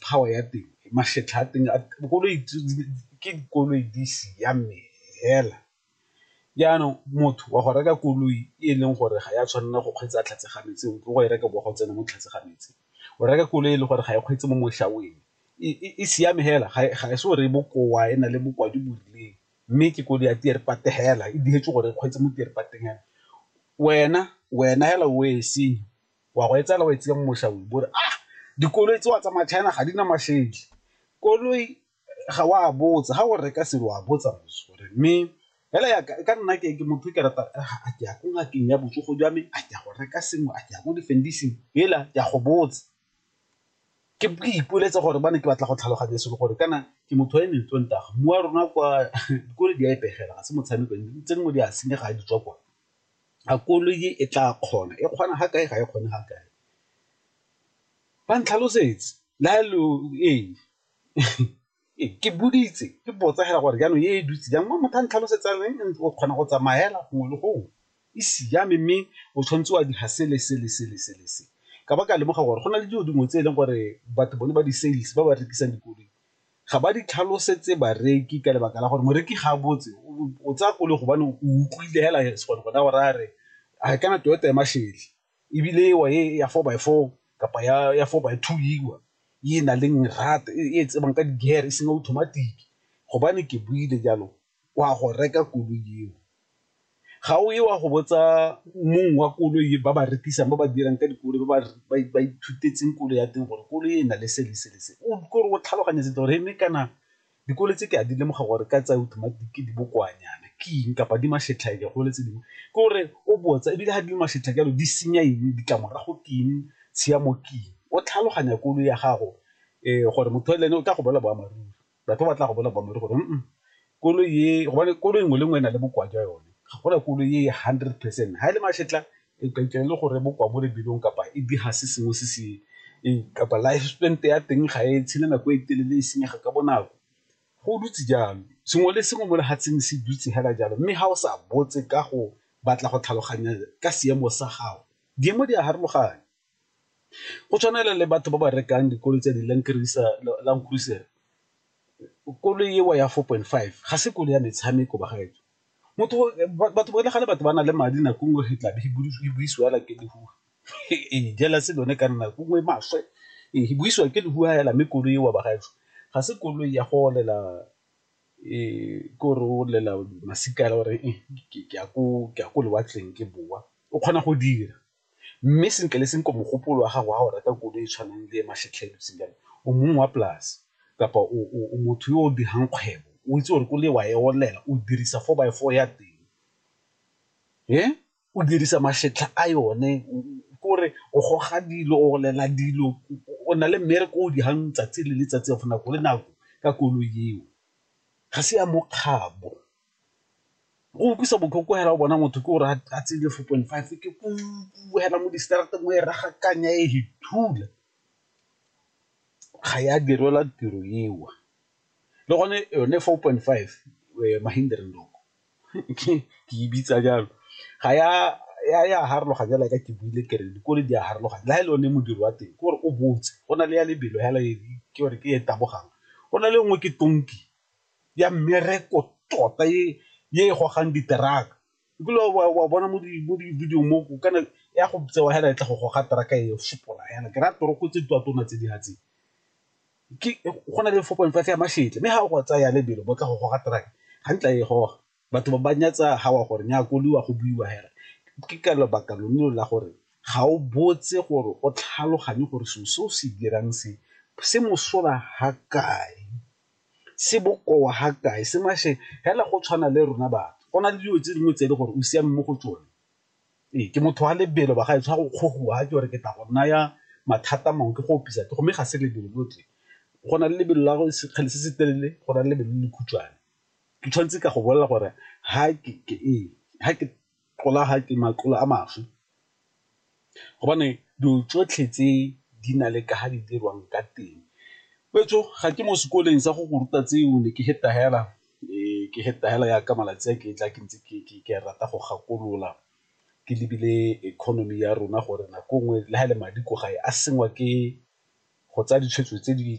power ya teng makgetlha a teng dikoloi ke dikoloi di siame fela, jaanong motho wa go reka koloi e leng gore ga ya tshwanela go kgweetsa tlhatswe ga metse o go e reka bo go tsena mo tlase ga metse, o reka koloi e le gore ga e kgweetse mo mošaweng e siame fela ga e se o re e bokoa e na le bokoa jo bo rileng mme ke koloi ya fela e diretswe gore e kgweetse mo wena fela o e senye. wa go e tsela o e tseya mo mošaweng bore a dikoloi tse wa tsamaya China ga di na mashedi koloi ga wa botsa ga o reka selo wa botsa gore mme fela ya ka nna ke ke motho ke rata a ke ya ko ngakeng ya botsogo jwa me a ke ya go reka sengwe a ke ya ko difendising fela ke a go botsa ke ipoletse gore ba ne ke batla go tlhaloganya selo gore kana ke motho wa e mentsi nta mmu wa rona kwa dikolo di a e pegela ga se motshameko ntse nngwe di a senyega ga di tswa kwa a koloi e tla kgona e kgona ga kae ga e kgone ga kae, ba ntlhalosetse la lo ee ke boditse ke botsa fela gore jaanong e dutse jang mo motho a ntlhalosetsa o kgona go tsamaya fela gongwe le gongwe e siame mme o tshwanetse wa dira sele sele sele sele se ka ba ka lemoga gore go na le dilo dingwe tse e leng gore batho bone ba di-sales ba ba rekisang dikoloi ga ba di tlhalosetse bareki ka lebaka la gore moreki ga a botse o tsaya koloi gobane o utlwile hela gone gona gore a re a kana Toyota ya Mashele ebile ewa e ya four by four kapa ya four by two ewa e na leng rata e tsebang ka di-gear e seng automatic gobane ke buile jalo o a go reka koloi eo, ga o ye wa go botsa mong wa koloi ba ba rekisang ba ba dirang ka dikoloi ba ba ithutetseng koloi ya teng gore koloi e na le se le se le se, o kore o tlhaloganya sentle gore mme kana dikoloi tse ke a di lemoga gore ka tsaya automatic di bokoanyana ke eng kapa di mašetlhaeke gole tse dingwe ke gore o botsa ebile ga di le mašatlhake jalo di senya eng ditlamorago ke eng tshiamo ke eng o tlhaloganya koloi ya gago gore motho le ene o tla go bolela boammaaruri. batho ba batla go bona boammaaruri gore koloi e gobane koloi nngwe le nngwe e na le bokoa jwa yone, ga gona koloi e hundred percent. Ga e le mašetla e ka e le gore bokoa mo lebelong kapa e diga se sengwe se se kapa life span ya teng ga e tshele nako e telele e senyega ka bonako, go dutse jalo. Sengwe le sengwe mo lefatsheng se dutse fela jalo mme ga o sa botse ka go batla go tlhaloganya ka seemo sa gago di a farologana. Go tshwana fela le batho ba ba rekang dikoloi tse di Land Cruiser, koloi eo ya four point five ga se koloi ya metshameko bagaetsho, batho ba le gale batho ba na le madi nako nngwe e tlabe e busiwa fela ke lehuwa ee jealous lone ka nna nako nngwe e maswe ee e busiwa ke lehuwa fela mme koloi eo bagaetsho ga se koloi ya go olela ke gore o olela masika fela o re ke ya ko lewatleng ke bowa o kgona go dira. mme sentle le sentle mogopolo wa gago wa go reka koloi e e tshwanang le e jaana o mongwe wa polase kapa o motho yo o dirang kgwebo o itse gore koloi wa e olela o dirisa four by four ya teng, o dirisa masetlha a yone ke gore o goga dilo o olela dilo o na le mmereko o o dirang tsatsi le letsatsi of nako le nako ka koloi eo, ga se ya mokgabo. Go utlwisa botlhoko hela o bona motho ke gore a tse le four point five ke hela mo distraateng mo e raga kanya e he thula, ga ya direlwa tiro eo, le gone yone four point five ke e bitsa jalo ga ya farologana jaaka ke buile ke re dikolo di a farologana le ga e le o ne modiri wa teng ke gore o botse go na le ya lebelo fela ke gore ke e tabogang go na le nngwe ke tonki. ya mmereko tota e e gogang diteraka nkile wa bona mo di-video mo kana ya go tsewa hela e tla go goga teraka e fopola yana ke raya toroko tse twa tona tse di hatseng ke go na le four point five ya mašetle mme ga o go tsaya lebelo bo tla go goga teraka ga ntla e goga batho ba ba nyatsa ga wa gore nya koliwa go buiwa hela ke ka lebaka lone la gore ga o botse gore o tlhaloganye gore seo se o se dirang se se mosola ga kae. se bokoa ga kae se mashe hela go tshwana le rona batho go na le dilo tse dingwe tse e le gore o siame mo go tsone ee ke motho wa lebelo ba ga e tshwara go kgogoa ke gore ke tla go naya mathata mangwe ke go opisa ke gomme ga se lebelo lotlhe go na le lebelo la sekgale se se telele go na le lebelo le le khutshwane ke tshwanetse ka go bolelela gore ga ke ee ga ke tlola ga ke matlolo a mašwi gobane dilo tsotlhe tse di na le ka ga di dirwang ka teng, wetsho ga ke mo sekoleng sa go go ruta tseo ne ke feta fela ke feta fela jaaka malatsi a ke tla ke ntse ke rata go gakolola ke lebile economy ya rona gore nako nngwe le ga e le madi ko gae a sengwa ke go tsaya ditshwetso tse di .